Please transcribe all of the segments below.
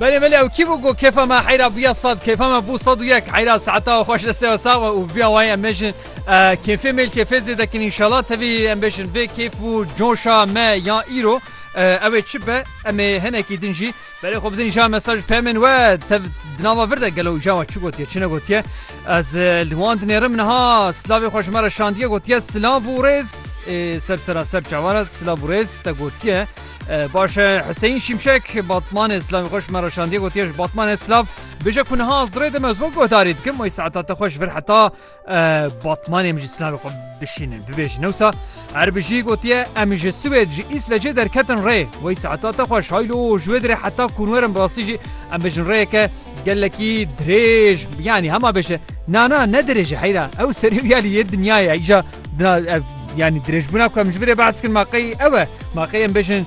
Belê belê ew kî bû ku kêfa me heyra bûya sed kêfa me bû sed û yek heyra seheta xweş deste we sax be û biya wayê em bêjin kêfê mêl kêfê zêde kin înşallah tevî em bêjin vê kêf û coşa me ya îro ew ê çi be em ê hinekî din jî berê xwe bidin ja mesaj pemên we tev di nava vir de gelo ja we çi gotiye çi ne gotiye ez li wan dinêrim niha silavê xwe ji me re şandiye gotiye silav û rêz ê ser sera ser çavan e silav û rêz te gotiye Baş e Hüseyin Şimşek Batmanê Slavî xweş me re şandiye gotiye ji Batmanê Slav bije ku niha ez dirê dime zok guhdarî dikim oy saeta te xweş vir heta Batmanê min jî Slavê xwe bişînin bibêjin newsa her bijî gotiye em ji Swêd ji Îsvecê derketin rê wey saeta te xweş haylo ji wê dirê heta kunwerin birastî jî em bijin rêyeke gelekî dirêj yanî hema bêje nana ne dirêje heyra ew serî ya lî yê dinyayê îja Dina ev yanî dirêjbûna ku em ji virê behs kirin ma qey ew e ma qey em bêjin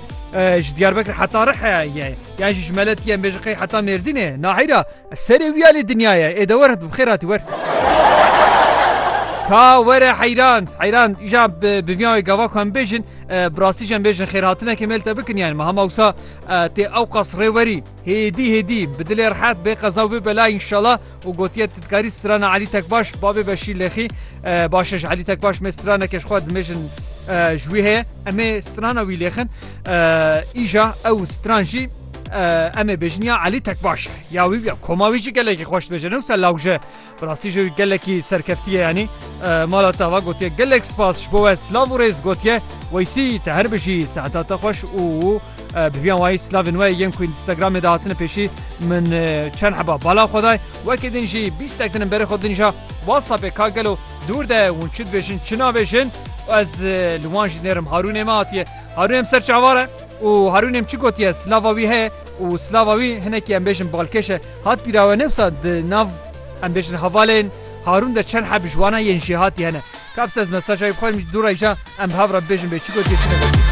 ji Diyarbekir heta Rihe ye yan jî ji Meletiyê em bêjin qey heta Mêrdînê naheyra serê wî alî dinya ye ê de were bi xêr hatî wer. Ka were heyran heyran îja bi viyan wê gava ku em bêjin bi rastî jî em bêjin xêrhatinekê mêl te bikin yani me hema wisa tê ew qas rêwerî hêdî hêdî bi dilê rehet bê qeza wê bela înşala û gotiye tu dikarî strana Elî Tekbaş babê Beşîr Lexî baş e ji Elî Tekbaş me straneke ji xwe dimêjin ji wî heye em ê strana wî lêxin îja ew stran jî em ê bêjin ya Elî Tekbaş ya wî ya koma wî jî gelekî xweş bêje ne wisa lawje bi rastî ji wî gelekî serkeftiye yanî mala te va gotiye gelek spas ji bo we silav û rêz gotiye weysî te her bijî seheta te xweş û Bi vîyan wayî slavên we yên ku Instagramê de hatine pêşî min çend heba bala xwe day. Wekî din jî bîstek din berê xwe dinîja WhatsAppê ka gelo dûr de hûn çi dibêjin çi nabêjin û ez li wan jî nêrim Harûnê me hatiye. Harûn em ser çavar e û Harûn em çi gotiye slava wî heye û slava wî hinekî em bêjin balkêş e. Hat bîra we ne wisa di nav em bêjin hevalên Harûn de çend heb ji wana yên jêhatî hene. Kaps ez mesajayê bi xwe dîm du reyja em bi hev re bibêjin bê çi gotiye çi negotiye.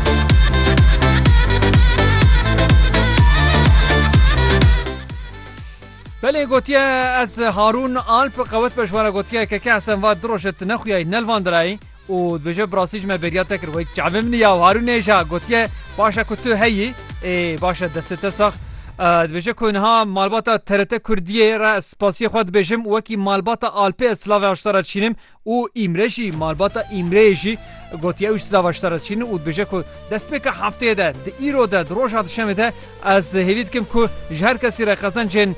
Belê gotiye ez Harûn Alp qewet be ji wana gotiye ke ke esen va du roj e tu nexuyayî nelvandirayî û dibêje bi rastî ji me bêriya te kir wek çavê min ya Harûn nêja gotiye baş e ku tu heyî ê baş e destê te sax dibêje ku niha malbata TRT Kurdiyê re ez spasiyê xwe dibêjim wekî malbata Alpê ez silavê aşta re dişînim Û Îmre jî, malbata Îmreyê jî gotiye ew ji silav a ji te re diçînin û dibêje ku destpêka hefteyê de, di îro de, di roja duşemê de ez hêvî dikim ku ji her kesî re qezencên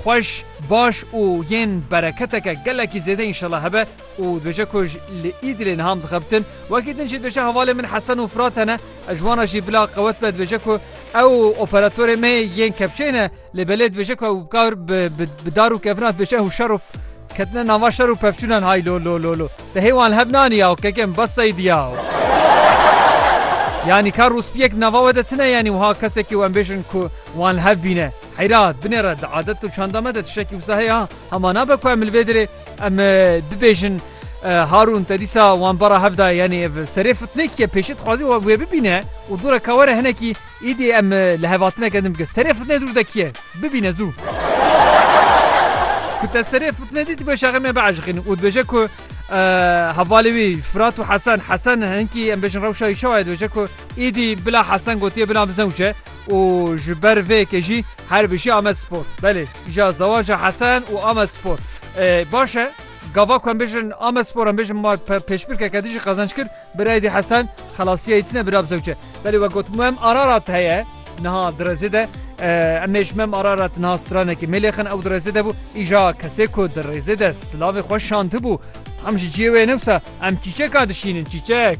xweş, baş û yên bereketeke gelekî zêde înşela hebe û dibêje ku li Îdilê niha em dixebitin. Wekî din jî dibêje hevalên min Hesen û Firat hene, ji wan re jî bila qewet be dibêje ku ew operatorê me yên kepçeyê ne. Lê belê dibêje ku ew kar bi dar û kevina dibêje ew şer û ketine nava şer û pevçûnan hay lo lo lo lo te hê wan li hev nanî ya kekem bas seyîdî ya yanî kar rûspiyek di nava we de tune yanî wiha kesekî em bêjin ku wan li hev bîne heyra binê re di adet û çanda me de tiştekî wisa heye ha hema nabe ku em li vê dirê em bibêjin Harûn te dîsa wan bara hevda yanî ev serê fitnekî ye pêşî dixwazî wê bibîne û dûre ka were hinekî Îdî em li hevatineke din bikin. Serê fitnê dûr de kî ye? Bibîne zû. Ku te serê fitnê dît dibê şaxê me biaşiqîn û dibêje ku hevalê wî Firat û Hesen Hesen hinkî em bêjin rewşa wî çawa ye dibêje ku îdî bila Hesen gotiye bila min zewc e û ji ber vê yekê jî her bijî Amed Spor. Belê îja zewaja Hesen û Amed Spor. Baş e gava ku em bêjin Amed Spor em bêjin ma pêşbirkeke dijî qezenc kir. Birayîdî Hesen xelasiyayî tine bira bizewçe. Belê we got mem Ararat heye niha direzê de emêj mem Ararat niha stranekê mêlêxin ew direzê de bû îja kesê ku dirêzê de silavê xwe şandibû tam ji ciyê wê newsa em çîçeka dişînin çîçek.